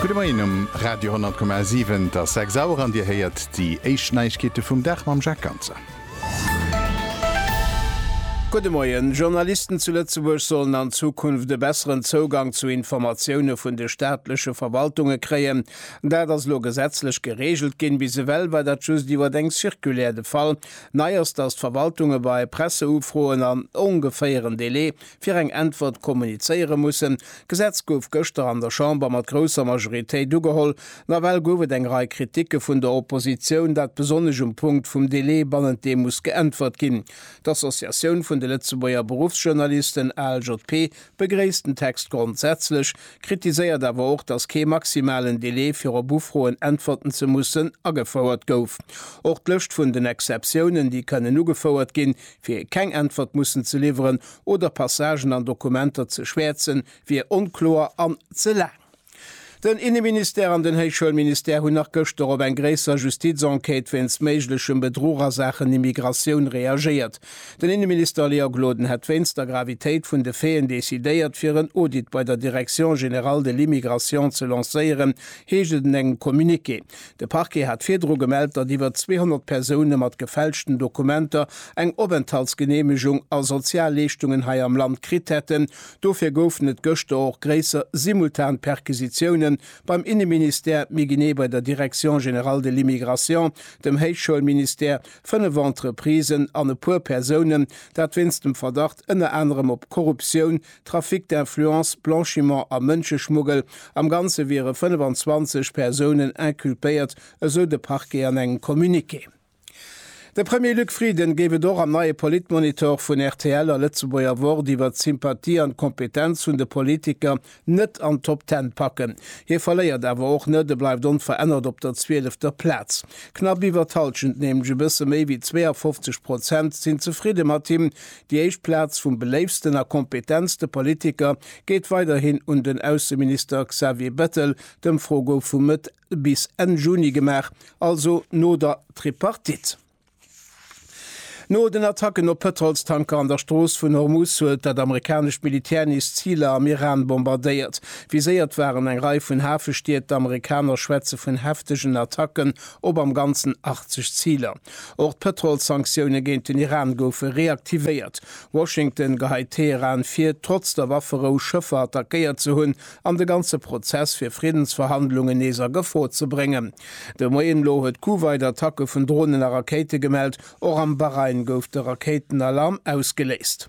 Gudde Moien um Radio 10,7. Et ass 6 Auer an Dir héiert déi éischt Neiegkeete vum Dag mam Jacques Ganzer. Gudde Moien. Journalisten zu Lëtzebuerg sollen an Zukunft e besseren Zougang zu Informatioune vun de staatleche Verwaltunge kréien. Dat ass elo gesetzlech gereegelt ginn. Bis ewell war dat just iwwer eng Circulaire de Fall. Nei ass, datt d'Verwaltunge bei Presseufroen an ongeféieren Delai fir eng Äntwert kommunizéiere mussen. D'Gesetz gouf gëschter an der Chamber mat grousser Majoritéit ugeholl. Nawell gouf et eng Rei Kriticke vun der Oppositioun, dat besonnesch um Punkt vum Delai, bannent deem muss geäntwert ginn. D'Associatioun vun de Lëtzebuerger Beruffsjournalisten, ALJP, begréisst den Text grondsätzlech, kritiséiert awer och, datt kee maximalen Delai, fir op Ufroen äntwerten ze mussen, agefouert gouf. Och d'Lëscht vun den Exceptiounen, déi kënnen ugefouert ginn, Fir keng Äntwert mussen ze liwweren oder Passagen an Dokumenter ze schwäerzen, wier onkloer an ze laang. Den Inneministère an den Héichschoulministère hunn nach gëschter op eng gréisser Justizenquête wéinst méiglechem Bedruch a Saachen Immigratioun reagéiert. Den Inneminister Léa Gloden hätt wéinst der Gravitéit vun de Faiten decidéiert, fir en Audit bei der Direction générale de l'immigration ze lancéieren, heescht et en engem Communiqué. De Parquet hat virdru gemellt, datt iwwer 200 Persoune mat gefälschten Dokumenter eng Openthaltsgeneemegung a Sozialleeschtungen hei am Land kritt hätten. Dofir goufen et gëschter och gréisser simultan Perquisitioune beim Inneministère, méi genee bei der Direction générale de l'immigration, dem Héichschoulministère, fënnef Entreprisen an e puer Persounen, dat wéinst dem Verdacht ënner anerem op Korruptioun, Trafic d'influence, Blanchiment a Mënscheschmuggel. Am Ganze wiere 25 Persounen inculpéiert, esou de Parquet an engem Communiqué. De Premier Luc Frieden géif et och am neie Politmonitor vun rtl a Lëtzebuerger Wort iwwert d'Sympathie an d'Kompetenz vun de Politiker net an d'Top Ten packen. Hie verléiert awer och net, e bleift onverännert op der zwielefter Plaz. Knapp iwwer d'Hallschent, nämlech e bësse méi wéi 52 Prozent, sinn zefridde mat him, Déi éischt Plaz vum beléiftsten a kompetentste Politiker geet weiderhin un den Ausseminister Xavier Bettel. D'Ëmfro gouf vu Mëtt bis Enn Juni gemaach, also no der Tripartite. No den Attacken op Pëtrolstanker an der Strooss vun Hormuz huet dat amerikanescht Militär nees Ziler am Iran bombardéiert. Viséiert waren eng Rei vun Hafestied. D'Amerikaner schwätze vun heftegen Attacken op am Ganzen 80 Ziler. Och d'Pëtrolssanktioune géint den Iran goufe reaktivéiert. Washington geheit Teheran vir, trotz der Wafferou Schëffer attackéiert ze hunn an de ganze Prozess fir Friddensverhandlungen nees a Gefor ze bréngen. De Moien elo huet Kuwait Attacke vun Dronen a Rakéite gemellt. Och am Bahrain gouf de Rakéitenalarm ausgeléist.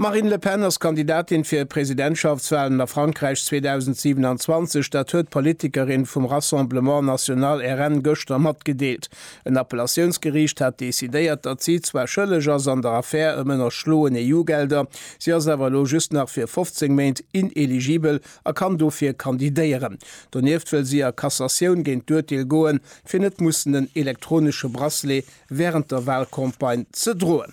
D'Marine Le Pen ass Kandidatin fir Presidentschaftswalen a Frankräich 2027. Dat huet d'Politikerin vum Rassemblement National, RN, gëschter matgedeelt. En Appellatiounsgeriicht hat decidéiert, datt si zwar schëlleg ass an der Affär ëm ënnerschloen EU-Gelder, si ass awer elo just nach fir 15 Méint ineligibel a kann dofir kandidéieren. Donieft wëll si a Cassatioun géint d'Urteel goen, fir net mussen en elektronesche Bracelet wärend der Walcampagne ze droen.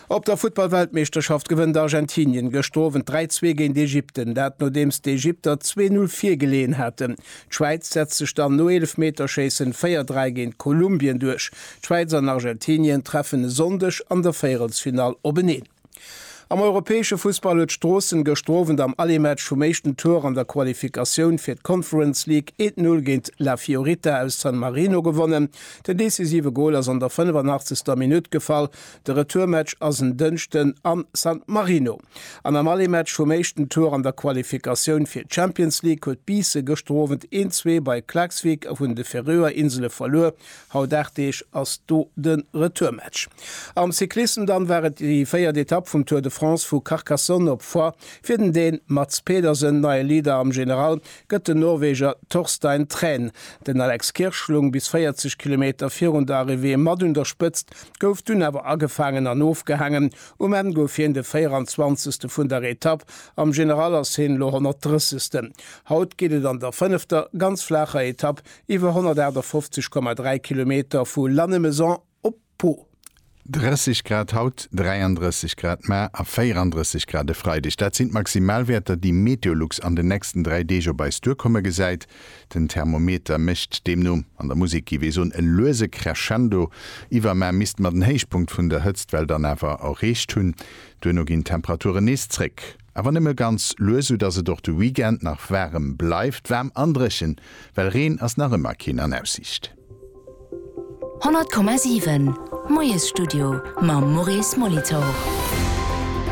Op der Futtballweltmeeschterschaft gewënnt Argentinien gëschter Owend 3, 2 géint Ägypten, dat nodeems d'Ägypter zwee Null virgeleeën haten. D'Schwäiz setzt sech dann no Eelefmeterschéissen 4, 3 géint Kolumbien duerch. D'Schwäiz an Argentinien treffen e Sonndeg an der Véierelsfinall openeen. Am europäesche Fussball huet Stroossen gëschter Owend am Aller-Match vum éischten Tour an der Qualifikatioun fir d'Conference League een Null géint La Fiorita aus San Marino gewonnen. Den decisive Gol ass an der 85. Minutt gefall. De Retourmatch ass en Dënschden a San Marino. An am Allé-Match vum éischten Tour an der Qualifikatioun fir d'Champions League huet Biisse gëschter Owend een Zwee bei Klaksvík a vun de Färöer Insele verluer. Haut 8 Deeg ass do de Retourmatch. Am Cyclissem dann war et déi véiert Etapp vum Tour de France vu Carcassonne op Foix fir den Dän Mads Pedersen, neie Leader am General, gëtt den Norweger Torstein Træn den Alex Kirchlung bis 40 Kilometer virun der Arrivée mat un der Spëtzt, gouf dunn awer agefaangen an ofgehaangen. Um Enn gouf hien de 24. vun der Etapp, am General ass hien elo 130. Haut geet et an der fënnefter, ganz flaacher Etapp iwwer 158,3 Kilometer vu Lannemezan, Op po. 30 Grad haut, 33 Grad mar a 34 Grad e Freideg, dat sinn d'Maximalwäerter, déi Meteolux an den nächsten dräi Deeg op eis duerkomme gesäit. Den Thermometer mécht deemno, an der Musek géif ee soen, e luese Crescendo. Iwwermar misste mer den Héichpunkt vun der Hëtztwell dann awer erreecht hunn. Duerno ginn d'Temperaturen nees zréck, awer nëmme ganz lues, soudass et och de Weekend nach waarem bleift. Waarm an dréchen, well Reen ass nach ëmmer keen an Aussiicht. 100,7 Moiesstudio mam Maurice Molitor.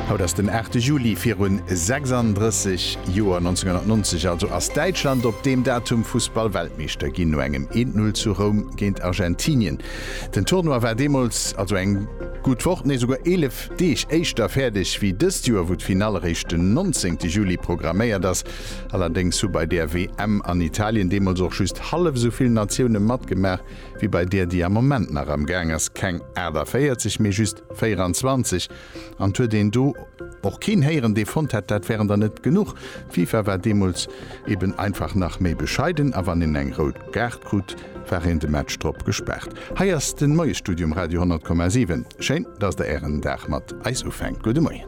Haut ass den 8 Juli, virun 36 Joer, 1990 also, ass Däitschland op deem Datum Fussball-Weltmeeschter ginn, no engem 1 Null zu Roum géint Argentinien. Den Tournoi war deemools, also eng gutt Woch, nee souguer 11 Deeg éischter fäerdeg wéi dëst Joer, wou d'Finall eréischt den 19 Juli programméiert ass. Allerdéngs hu bei där WM an Italien deemools och just hallef esou vill Natioune matgemaach wéi bei där, déi am Moment nach am Gaang ass, keng 48, mee just 24. An et huet een do och keen héieren, dee fonnt hätt, dat wären der net genuch. D'FIFA war deemools eben einfach nach méi bescheiden a wann een eng rout Kaart krut, war een de Match drop gespaart. Hei ass den Moiesstudio um Radio 100,7. Schéin, dass der Ären Dag mat eis ufänkt. Gudde Moien.